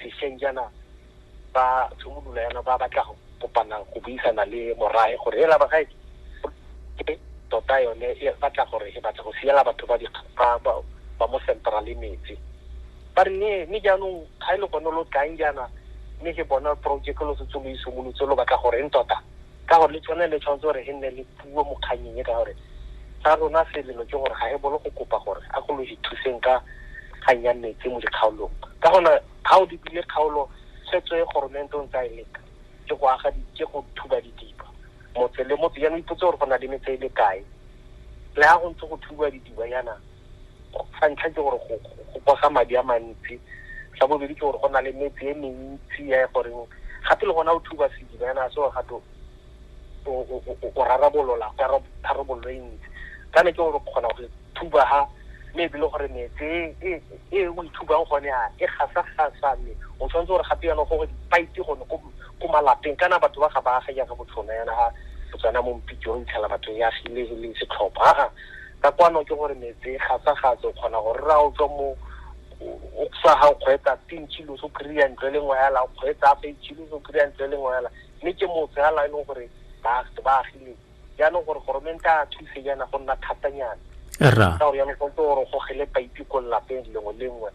sešweng jaana ba tshimolola yana ba batla go kopana go buisana le morae gore ela bagae ke tota yone e batla gore e batla go siela batho ba ba mo central metsi ba re ne mme jaanong ga e le gone lo tlang jaana mme ke bona project lo setse lo isimolotse lo batla gore eng tota ka gore le tsone le tshwanetse gore e nne le puo mo kganyeng e ka gore sa rona selelo ke gore ga e bolo go kopa gore a go lo ithuseng ka kgang ya metsi mo dikgaolong ka gona ga o lebile kgaolo tshwetso e goromente o ntse a e leka ke go aga ke go thuba didiba motse le motse jaanong ipotse gore go na le metse e le kae le ga go ntse go thuba didiba jaana sa ntlha ke gore go kosa madi a mantsi sa bobedi ke gore go na le metse e mentsi ya e goreng gape le gona o thuba sediba yana se gore gato o rarabolola ka tharabololo e ntsi ka ne ke gore kgona go thuba ha mme ebile gore metse e, e, e o ithubang gone a e gasa gasa mme o tshwanetse gore gape yana gore dipaiti gone ko malapeng kana batho ba ga ba aga jaaka botlhona yana ga botswana mo mpitse o itlhela batho ya agile le setlhopha ka kwano ke gore metse gatsagatse o kgona go rra o tswa mo o sa ga o kgwetsa tin chilo so kry-a ntlo e le nngwe hela o kgwetsa afa chilo so kry-a ntlo e le nngwe hela mme ke motse hela e leng gore baagi ba agileng jaanong gore goromente a thuse jaana go nna thatanyana ka gore jaanong tshwanetse gore o gogele paipi ko lelapeng lengwe le nngwe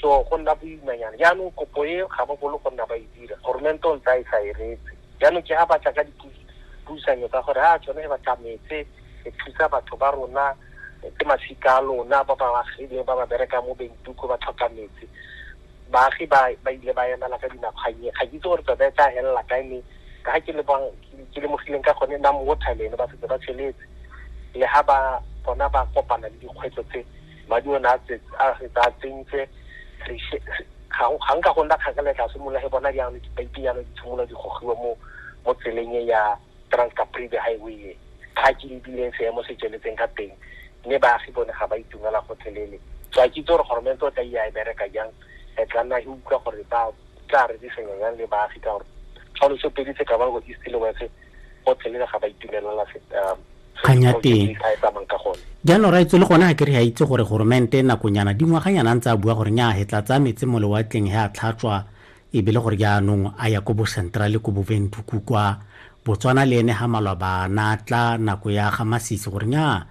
so go nna boimanyana jaanong kopo e ga ba bolo go nna ba e dira goromente o ntse a e sa e retse jaanong ke ga ba tla ka dipuisanyo tsa gore a tsone e ba tlametse e thusa batho ba rona ke masika a lona ba ba agileng ba ba berekang mo bentuko ba tlhoka metsi baagi ba ba ile ba emela ka dinakgwanye ga ke itse gore tsone e tla helela kae mme ka ga ke le bang ke lemogileng ka gone nna mo water le ene ba setse ba tsheletse le ga ba bona ba kopana le dikgwetlho tse madi o ne a fetsa a tsentse ga nka go nna kgakala tla simolola ge bona jaanong dipaipi jaanong di tshimolola di gogiwa mo mo tseleng e ya transcapribe highway e ga ke lebileng seemo se tsweletseng ka teng mme baagi bone ga ba itumela gotlhelele so a ke itse gore goromente o tla iya e bereka jang e tla nna e utlwa gore ba tla re disenya jang le baagi ka gore tshwanetse pedi tse ka ba go east le west gotlhe le ga ba itumelela um, kganya teng jaanong ra itse le gone ga ke re ya itse gore goromente nakonyana dingwaganyana ntse a bua gore nya he tla tsaya metse mo lewatleng he a tlhatswa e be le gore jaanong a ya ko bo centrale ko boventuku kwa botswana le ene ga malwa ba natla nako ya ga masisi gore nya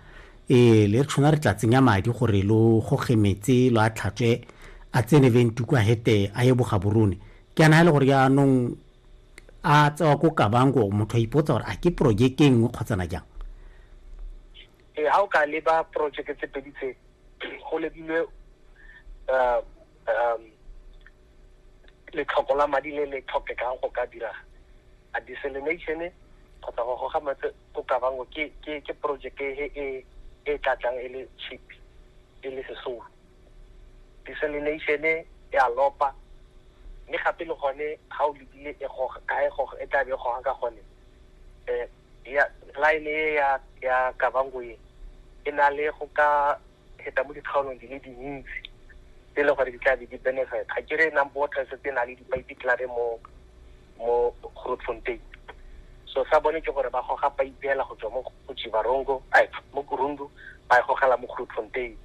ee le re tshwana re tla tsenya madi gore lo goge metse lo a tlhatswe a tsene ventuku a hete a ye bogaborone ke ana e le gore jaanong a tsewa ko kabanko motho a ipotsa gore a ke projeke e nngwe kgotsana jang ee ga o ka leba projeke tse pedi tse go lebilwe um, um, letlhoko la madi le le tlhokekang go ka dira a desalination kgotsa go goga matse ko kabango ke projeke e, e e tlatlang e le cheap e le sesolo Desalination e a lopa, mme gape le gone ga o lebile e goga ka e goga e tla be e goga ka gone um ya line e ya ya Kavango e e na le go ka feta mo dikgaolong di le dintsi tse e leng gore di tla be di benefit ga ke re number water e setse e na le di-pipe mo mo Grootfontein so sa bone ke gore ba goga paipe hela go tswa mo go Chivarongo ai mo Kurundu ba e gogela mo Grootfontein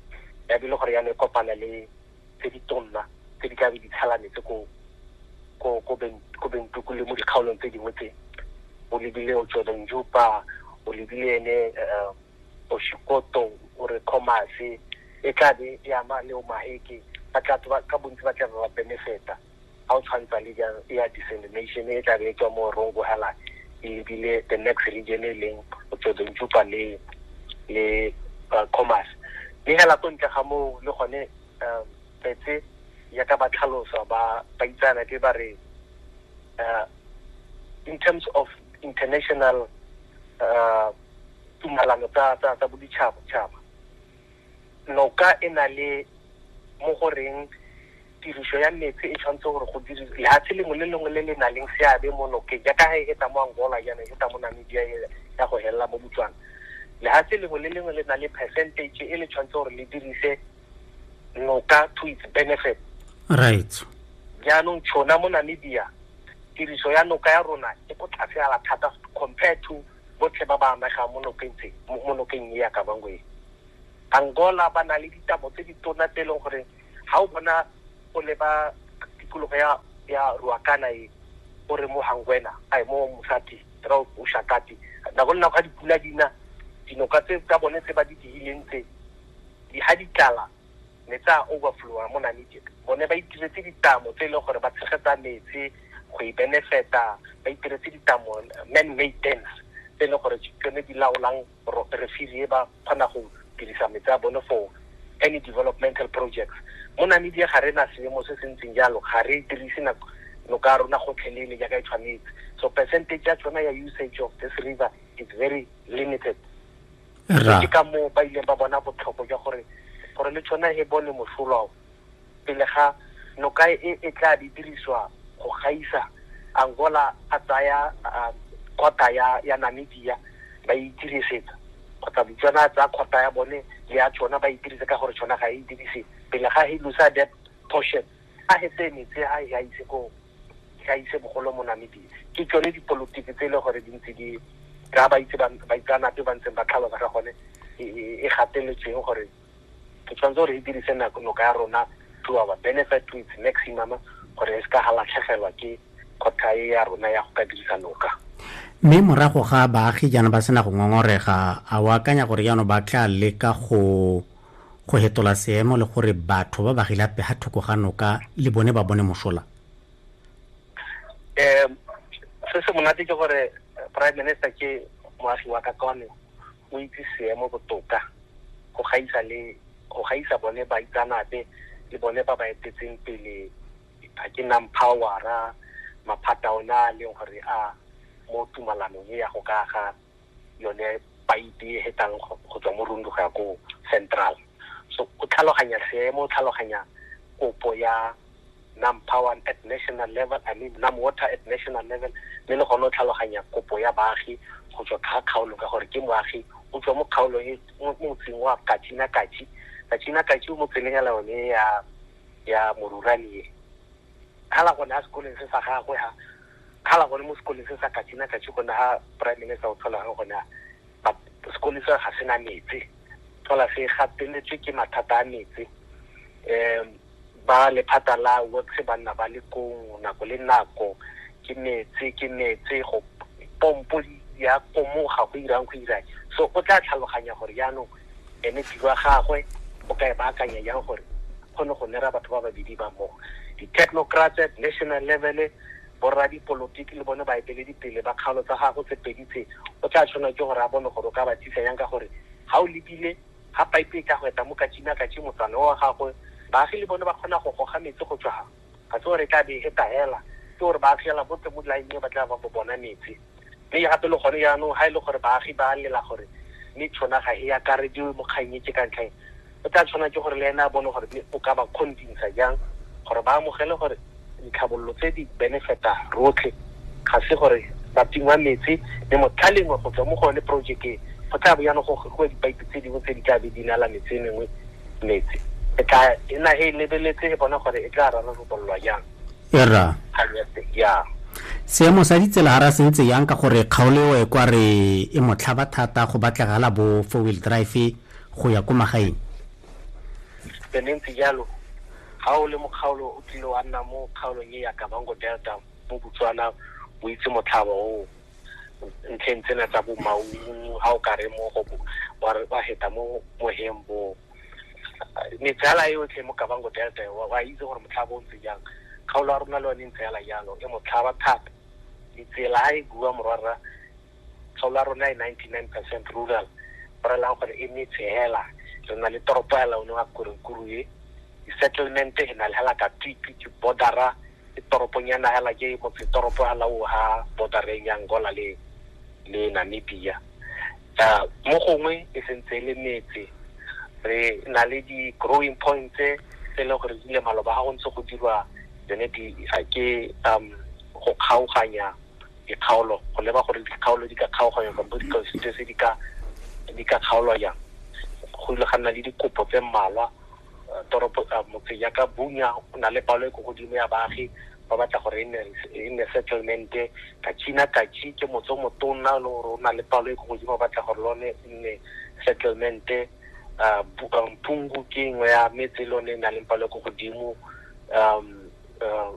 ya bile gore ya ne kopana le tse di tonna tse di ka be di tshela metse ko ko ko ben ko bentuku le mo dikgaolong tse dingwe tse o lebile o tswele njupa o lebile ene eh, o shikoto o re comase e tla be e ama le o maheke ba tla ba- ka bontsi ba tla be ba benefeta ga o tshwantsa le jang e ya dissemination e tla be e tswa mo rongo hala ebile the next region e leng o tsodonjupa le le uh, commerce mme hela ko ntle ga moo le gone um tsetse yaka ba tlhalosa ba ba itsana ke ba re uh, in terms of international uh, tumalano tsa tsa tsa boditšhaba noka e na le mo go reng tiriso ya metsi e tshwanetse gore go dire lehatshe lengwe le lengwe le le na leng seabe mo nokeng jaaka ga e heta mo angola jaana e heta mo namibia e ya go helela mo botswana lehatshe lengwe le lengwe le na le percentage e le tshwanetse gore le dirise noka to its benefit right jaanong tshona mo namibia tiriso ya noka ya rona e ko tlase ala thata compared to botlhe ba ba amegang mo nokeng tse mo nokeng e ya Kavango e. Angola ba na le ditamo tse di tona tse e leng gore ga o bona o leba tikologo ya ya Ruacana e o re mo Hangwena a mo Musati ra o Shakati nako le nako ga dipula dina dinoka tse tsa bone tse ba di digileng tse di ha di tlala ne tsa overflowa mo Namibia bone ba itiretse ditamo tse e leng gore ba tshegetsa metsi go e benefeta ba itiretse ditamo man made dams tse e leng gore tsone di laolang refiri e ba kgona go dirisa metsi a bone for any developmental projects mo Namibia ga re na seemo se se ntseng jalo ga re dirise nako noka rona gotlhelele jaaka e tshwanetse so percentage ya tsona ya usage of this river is very limited ke ka moo ba ileng ba bona botlhoko jwa gore gore le tshwana e bone mosola o pele ga noka e e tla di diriswa go gaisa angola a tsaya kgota um, ya ya namibia ba e itirisetsa kgotsa botswana a tsaya kgota ya bone le ya tsona ba e itirisetsa ka gore tsona ga e dirise pele ga helusa that portion a he tseye metsi a he a ise ko a ise bogolo mo namibia ke tsone dipolotiki tse e le gore di ntse di ka ba itse baitsanape ba ntseng ba tlhalosa ka gone e, e, e gateletsweng gore ke tshwanetse gore e dirise noka ya rona to our benefit to its maximum gore e se ka ga latlhegelwa ke kgotha e ya rona ya go ka dirisa noka mme morago ga baagi jaana ba sena go ngongorega a o akanya gore jaanong ba tla leka go go hetola seemo le gore batho ba ba gila peha thoko ga noka le bone ba bone mosola eh se se monate ke gore eh, prime minister ke moagi wa kakone o itse seemo botoka go gaisa le go gaisa bone ba itsanape le bone ba ba etetseng pele ga ke nang powera maphata ona a leng gore a mo tumalanong e ya go kaga yone paipe e hetang go tswa mo rundu go ya ko central so o tlhaloganya seemo o tlhaloganya kopo ya nam power at national level i mean nam water at national level mme le gone o tlhaloganya kopo ya baagi go tswa kga kgaolo ka gore ke moagi o tswa mo kgaolo e motseng wa katsina katsi katsina katsi o mo tseleng ya laone ya ya moruranie khala gone a sekoleng se sa gagwe ha khala gone mo sekoleng se sa katsina katsi gone ha prime minister o tlhola ga gone but sekole se ga sena metsi tlhola se gateletswe ke mathata a metsi um ba lephata la works ba nna ba le kong nako le nako ke metsi ke metsi go pompo ya komoga go irang go irang so o tla tlhaloganya gore jaanong ene tiro ya gagwe o ka e baakanya jang gore kgone go nera batho ba babedi ba mmogo di-technocrats at national level borra dipolotiki le bone baeteledipele ba kgaolo tsa gago tse pedi tse o tla tshwanela ke gore a bone gore o ka ba tlisa yang ka gore ga o lebile ga pipe e ka go eta mo katsina katsi motsana wa gagwe baagi le bone ba kgona go goga metsi go tswa ga se gore e tla be e tahela ke gore ba fiela bo teng mo dilaeneng ba tla ba bo bona metsi mme gape le gone jaanong ga e le gore baagi ba lela gore mme tshona ga e akarediwe mo kgang e ke ka ntlheng o tla tshwana ke gore le ene a bone gore o ka ba convinsa jang gore ba amogele gore ditlhabololo tse di benefita rotlhe ga se gore ba tingwa metsi mme motlhalengwe go tswa mo go yone project e go tla bo yana go gogiwa dipaipi tse dingwe tse di tla be di nala metse mengwe metse e tla e na e lebeletse e bona gore e tla rarabolola jang era ya seemo sa ditsela ga ra sentse yang ka gore kgaoleo e kwa re e motlhaba thata go batlegala bo four wheel drive go ya ko magaeng le ntse jalo ga o le mokgaolo o tlile wa nna mo kgaolong e ya kabango delta mo botswana o itse motlhaba oo ntlheng tsena tsa bo maungu ga o ka re mo go wa heta mo moheng bo metsala e yotlhe mo kabango delta wa itse gore motlhaba o ntse jang kgaolo ya rona le yone ntse yala jalo e motlhaba thata ditsela ga e bua morwarra kgaolo ya rona e ninety nine percent rural go relang gore e metse hela re na le toropo ya laone wa korekuru e di-settlement e na le hela ka twipi ke bordera Ke toropong ya Nahela, ke motsetoropo ha la o ha border-reng ya Angola le le Namibia. Mo gongwe e sentse e le metse, re na le di-growing points tse e leng gore di le maloba ga go ntse go dirwa tsone di ke go kgaoganya dikgaolo go leba gore dikgaolo di ka kgaoganya kampo di-constituency di ka di ka kgaolwa jang. Go ile ga nna le dikopo tse mmalwa. toropo uh, motse ya ka bunya o na le palo e ko godimo ya baagi ba batla gore e nne e settlement ka china kachi ke motse o motona le gore o na le palo e ko godimo ba batla gore lone e nne settlement uh, mpungu ke nngwe ya metse e lone e na leng palo e ko godimo um uh,